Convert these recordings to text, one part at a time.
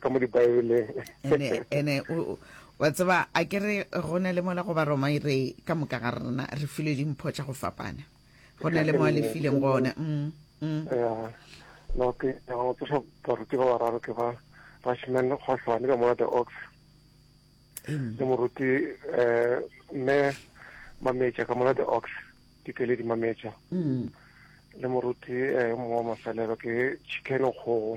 ka mo dibaebeleng ene ene wa tseba a ke re go ne le mola go baroma e re ka moka ga rena re filwe dimpho tša go fapana go ne le mo a le fileng gone mm, mm. no ke go tsosa baruti ba bararo ke ba rashman kgohlwane ka mona the ox mm. le moruti um mme mametša ka mona the ox dikeledi mametša mm. le moruti um mongwe wa mafelelo ke chicken kgogo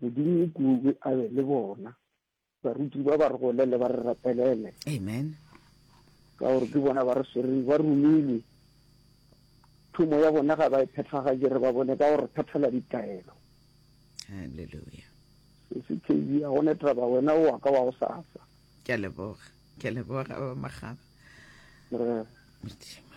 Modimo o kudu a be le bona. Baruti ba ba re golele ba re rapelele. Amen. Ka gore ke bona ba re swereng ba romilwe. Thomo ya bona ga ba e phethagatše re ba bone ka gore phethela ditaelo. Hallelujah. Sesi Kedi ya gone taba wena o wa ka wa go sasa. Ke a leboga. Ke a leboga ba magaba. Re. Modimo.